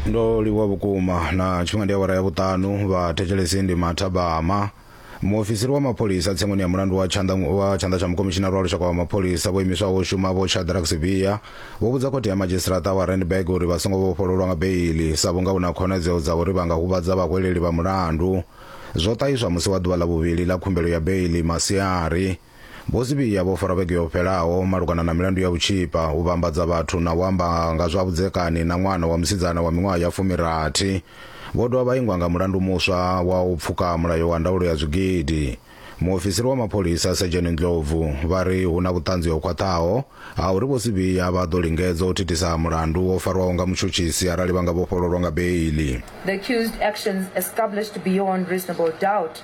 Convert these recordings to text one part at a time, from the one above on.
ndo livhuwa vhukuma na tshifhinga ndi awara ya vhuṱanu vha thetshelesi ndi mathabama muofisiri wa mapholisa tsengoni ya mulandu wa tshanḓa wa tshanḓa tsha mukomishinari wa lushaka wa mapholisa vho imiswaho u shuma vho shadrack sibia vho vhudza khothe ya madzhisiṱaraṱa wa randburg uri vha songo vhofhololwa nga beili sa vhunga hu na khonadzeo dza uri vha nga huvhadza vhahweleli vha mulandu zwo ṱahiswa musi wa ḓuvha ḽa vhuvhili ḽa khumbelo ya beili masiari Vho Sibiya vho farwa vhege yo fhelaho malugana na milandu ya vhutshipha, u vhambadza vhathu na u amba nga zwa vhudzekani na ṅwana wa musidzana wa miṅwaha ya fumirathi. Vho dovha vha ingwa nga mulandu muswa wa u pfuka mulayo wa ndaulo ya zwigidi. Muofisiri wa mapholisa Sedzheni Ndlovu vha ri hu na vhuṱanzi ho khwaṱhaho ha uri Vho Sibiya vha ḓo lingedza u thithisa mulandu wo farwaho nga mutshutshisi arali vha nga vhofhololwa nga beiḽi. The accused actions established beyond reasonable doubt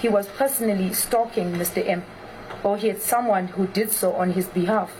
he was personally stalking Mr. M or he had someone who did so on his behalf.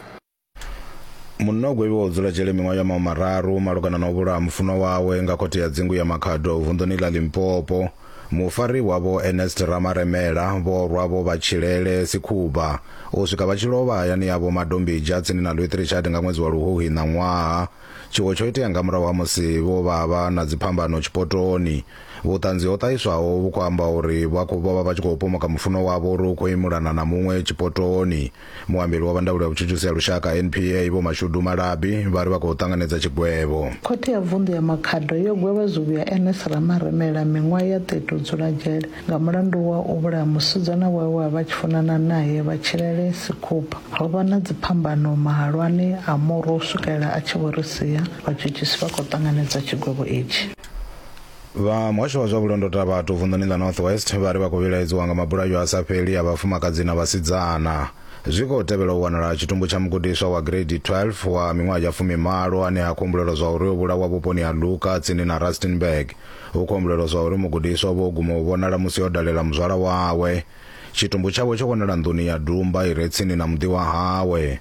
Munna o gwevhiwaho u dzula dzhele miṅwaha ya mahu mararu malugana na u vhulaha mufunwa wawe nga khothe ya dzingu ya Makhado vunḓuni ḽa Limpopo. Mufariwa Vho Ernest Ramaremela vho rwa vho vha tshilele sikhuvha u swika vha tshi lovha hayani yavho Madombija tsini na Lwethrichardt nga ṅwedzi wa Luhuhi ṋaṅwaha. Tshiwo tsho itea nga murahu ha musi vho vha vha na dziphambano tshipotoni. Vhuṱanzi ho ṱahiswaho vhu khou amba uri vha khou vha vha vha tshi khou pomoka mufunwa wavho uri u khou imulana na muṅwe tshipotoni. Muambeli wa vha ndaulo ya vhutshutshisi ha lushaka, NPA, Vho Mashudu Malabi, vha ri vha khou ṱanganedza tshigwevho. Khothe ya Vunḓu ya Makhado yo gwevha zwivhi ya Ernest Ramaremela miṅwaha ya 30 u dzula dzhele nga mulandu wa u vhulaha musidzana wawe we a vha a tshi funana nae, Vhatshilele Sikhupha. Ho vha na dziphambano mahalwani a murwa u swikelela a tshi vho ri sia. Vhatshutshisi vha khou ṱanganedza tshigwevho itshi. vha muhasho wa zwa vhulondota vhathu vunḓuni ḽa north west vha ri vha khou vhilaedziwa nga mabulayo a sa fheli a vhafumakadzi na vhasidzana zwi khou tevhela u wanala tshitumbu tsha mugudiswa wa grade 12 wa miṅwaha ya fumimalo ane ha khombulela zwa uri o vhulawa vhuponi ha luka tsini na rustenburg hu khou humbulelwa zwa uri mugudiswa o vho guma u vhonala musi o dalela muzwala wawe tshitumbu tshawe tsho wanala nḓuni ya dumba i re tsini na muḓi wa hawe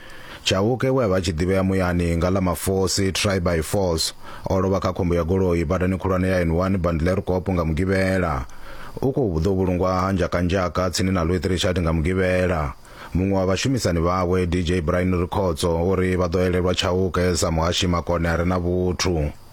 Chauke we a vha a tshi ḓivhea muyani nga ḽa mafosi, try by force, o lovha kha khombo ya goloi badani khulwane ya N1 Bandlerkop nga Mugivhela. U khou ḓo vhulungwa ha Njakanjaka tsini na Louis Trichardt nga Mugivhela. Muṅwe wa vhashumisani vhawe, DJ Brian Rikhotso, o ri vha ḓo elelwa Chauke sa muhashi makone a re na vhuthu.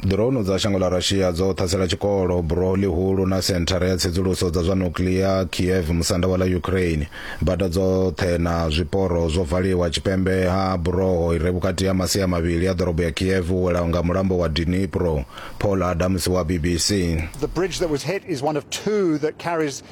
Drone dza shango ḽa Russia dzo ṱhasela tshikolo, buroho ḽihulu na senthara ya tsedzuluso dza zwa nuclear Kiev, musanda wa ḽa Ukraine. Bada dzoṱhe na zwiporo zwo valiwa tshipembe ha buroho ire vhukati ha masia mavhili a ḓorobo ya Kiev u welaho nga mulambo wa Dnipro. Paul Adams wa BBC. The bridge that was hit is one of two that carries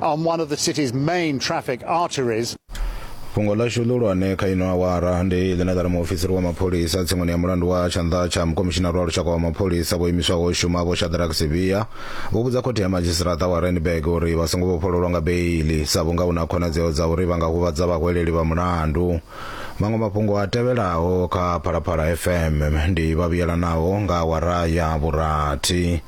on one of the city's main traffic arteries. fhungo ḽashu ḽihulwane kha ino awara ndi ḽine ḽa ri muofisiri wa mapholisa tsimuni ya mulandu wa tshanḓa tsha mukomishinari wa lushaka wa mapholisa vho imiswaho u shuma vho shadrack sivia vho vhudza khothe ya madzhisiṱaraṱa wa randburg uri vha songo vhofhololwa nga beili sa vhunga hu na khonadzeo dza uri vha nga huvhadza vhahweleli vha mulandu maṅwe mafhungo a tevhelaho kha phalaphala fm ndi vha vhuyelanaho nga awara ya vhurathi